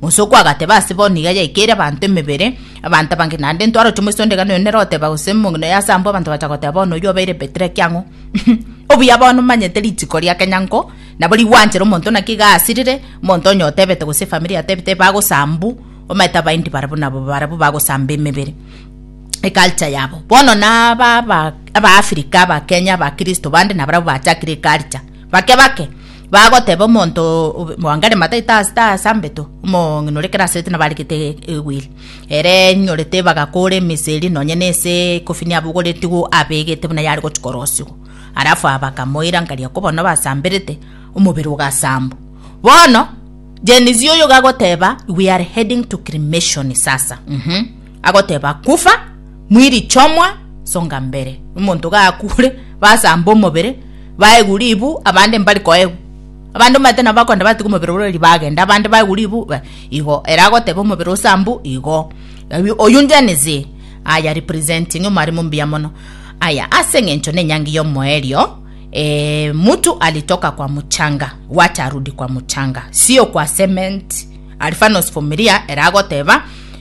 Mosoko agateba, Ase bono iga yaikeire abanto emebere, abanto abange naende ntwaroche moisondegano oyo nere oteba, gose mong'ina oyo ase abwo abanto bacha goteba, bono oyio obeire Petero ekiang'u. Obuya bono omanyete rituko ria kenyango, nabo rigwanchere omonto naki iga asirire, omonto onye otebete gose efamiri yatebete bagosambu, omanyete abaindi barabwo nabo barabwo bagosamba emebere eculture yabo. Bono naba aba Africa, aba Kenya, aba Kristo bande nabarabwo bachakire eculture. Bake bake bagoteba omonto bwangare mataito ase tasambeto omong'ina ore kerasete nabaregete egwili ere enyorete bagakora emeseri nonye nese ekofini abogoretigwo abegete buna yare gochia korosigwa alafu aba bakamoirankaria ko bono basamberete omobere ogasambwa bono Gen Z oyo gagoteba we are heading to cremation sasa mmh. agoteba kufa mwiri chomwa songa mbere omonto gakure basamba omobere baegu ribu abande mbari koegu abande omate nabo bakonda batiga omobere orori bagenda abande baegu ribu igo ere agoteba omobere osambu igo oyio njenisi aya representing omwarimo mbuya mono aya ase engencho ne enyangi ya omoerio e mutu alitoka kwa muchanga watarudi kwa muchanga sio kwa cement alfanos fumiria ere agoteba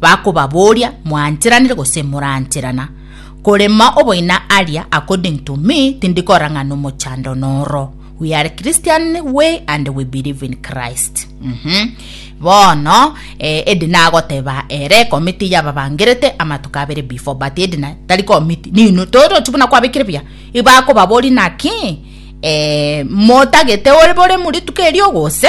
Bakobabooria, Mwancheranire gose morancherana? Korema oboina aria, according to me, tindi kora ng'a nomochando noro. We are Christian way and we believe in Christ. Mm -hmm. Bono eh, edi nagoteba ere komiti yababangerete amatuko abere before but edi na tari komiti nino torochi buna kwabekire buya ibakobabori naki eh, motagete ore bore murituko erio gose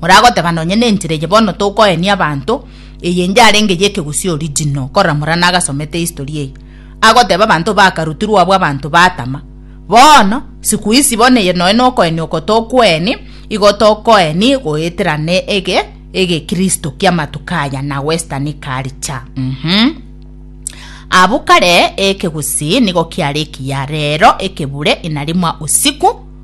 Moragoteba nonye nenchera eye bono tokoenia abanto, eye enche arenge y'ekegusii original, korora morana agasomete history eye, agoteba abanto bakarutirwe abwo abanto batama. Bono, siku hizi bono eye noe nokoenia oko tokoeni, igo tokoeni goeterane ege egekristo ki'amatuko aya na western culture. Uhum. Abwo kare ekegusii nigo kiare ekiya, rero ekebure inarimwa usiku,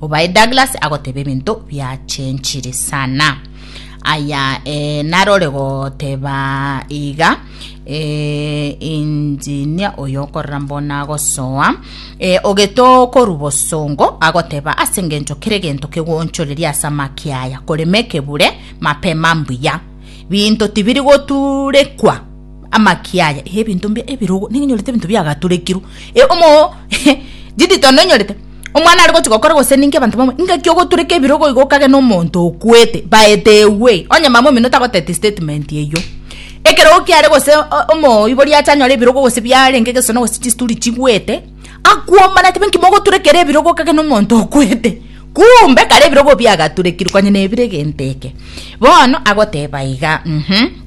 Obaye Douglas agoteba ebinto biachenchire sana. Aya e, narore goteba iga e, injinia oyo okorera mbona agosoa e, ogeto koru bosongo agoteba ase ngencho kere gento kegonchoreria ase amaki aya korema ekebure mapema mbuya binto tibiri goturekwa Amaki aya, e ebinto mbia ebirogo, nigo nyorete ebinto biagaturekirwe, e omoo didito onde onyorete omwana are gochia gokora gose ninki abanto bamwe ngaki ogotureka ebirogo igo okagena omonto okwete baete ewei, onye mama omino tagoteti statement eyio, ekerogo kiare gose o- omoibori acha anyore ebirogo gose biarenge egesono gose chisturi chigwete, akwomana atibe nki mogoturekera ebirogo okagena omonto okwete, kumbe kare ebirogo biagaturekirwe konya nebire egento eke. Bono agoteba iga mh.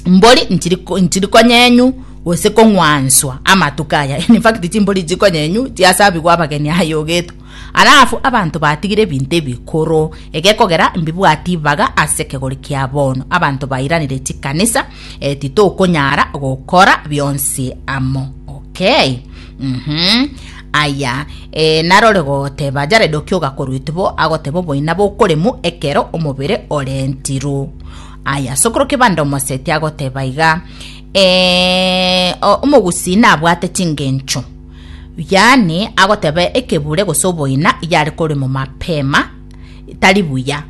mbori nchiri ko- nchiri konyenyu gose kong'wanswa amatuko aya in fact chimbori ichi konyenyu chiasabigwa abageni aya ogeto alafu abanto batigire ebinto ebikoro egekogera mbibwati ibaga ase ekegori kia bono abanto bairanire chikanisa eh, titokonyara gokora bionsi amo okay mhm aya e, narore goteba jared okioga korwa itibo agoteba oboina bokoremu ekero omobere orentirwe Aya, sokoro kebanda omoseti agoteba iga, eh, o- omogusii nabwate chingencho. Yaani, agoteba ekebure gose oboina yare koremo mapema, tari buya.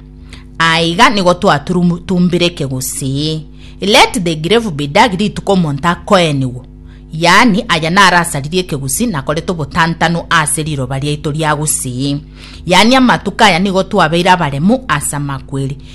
Aiga nigo twatumbire ekegusii. Let the grave be dug rituko omonto akoenigwa. Yaani, aya naro asaririe ekegusii nakorete obotantanu ase riroba riaito ria gusii. Yaani amatuko aya nigo twabeire abaremu ase amakweri.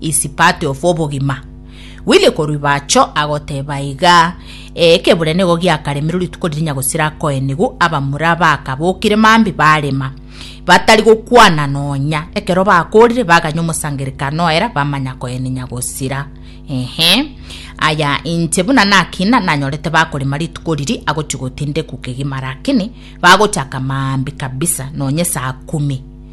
is part of obogima. Willy Koruibacho agoteba iga, Ee, ekebure nigo giakaremirwe rituko ririnya gosira akoenigu abamura bakabokire mambi barema, batari gokwana nonya. Ekero bakorire baganya omosangerekano oera bamanya koeninya gosira. Ehe, aya inche buna nakina nanyorete bakorema rituko riri agochi gotindekwa kegima rakini bagochaka mambi kabisa nonya saa kumi.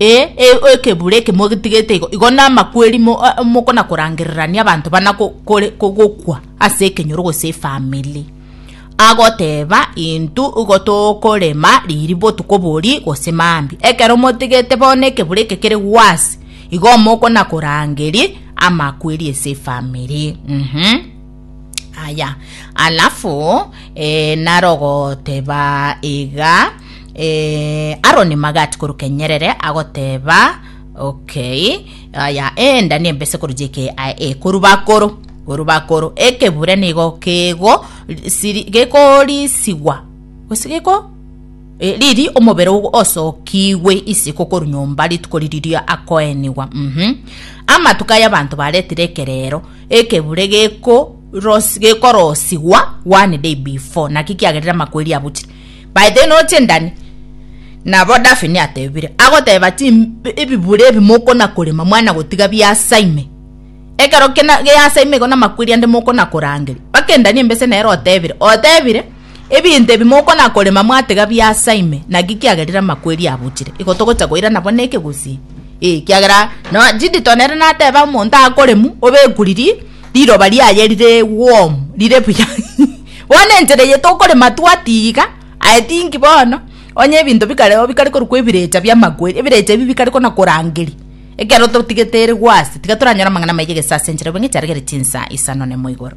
Ee, ee, ekebura eke motigetie igo, igo namakweri mokona korangererania abanto bana gokwa ase ekenyoro gose efamili. Agoteba intwe igo tokorema riiri botuko boria gose mambia. Ekero motigete bono ekebura eke kere gwasi, igo mokona korangeria amakweri ase efamili. Uhum. aya alafu eh, narogoteba iga eh, aroni magati koruke nyerere agoteba okay aya enda nembese korujeke ekorubakoro korubakoro ekebure nigo kego siri- gekorisigwa gose geko Eh, riri omobere ogo osokigwe isiko koru nyomba rituko ririria akoenigwa mhm amatuko y'abanto baretire ekerero Ekebure gekorosigwa one day before, naki kiagerire amakweri abuchire. By the way, noro chindani? Nabo Daphne atebire, agoteba ti ebibure ebi mokona korema mwana gotiga biasa ime. Ekero kina geasa ime igo namakweri ande mokona korangeria. Bakendani embese nere otebire, otebire. Ebinto ebi mokona korema mwatega biasa ime, naki kiagerire amakweri abuchire. Igo togocha koira nabo neke gose? Ee, kiagera no Judith one ere nateba omonto akoremu obekuriri riroba riaye rire warm, rire buya. Bono enchera eye tokorema twatiga, I think bono onye ebinto bikare oo bikare korokwa ebirecha bi'amakweri, ebirecha ebi bikare kona korangeria ekero totigete ere gwase, tiga toranyore amang'ana amaya gese ase enchera, obeng'e chiaregere chinsa isano nemo igoro.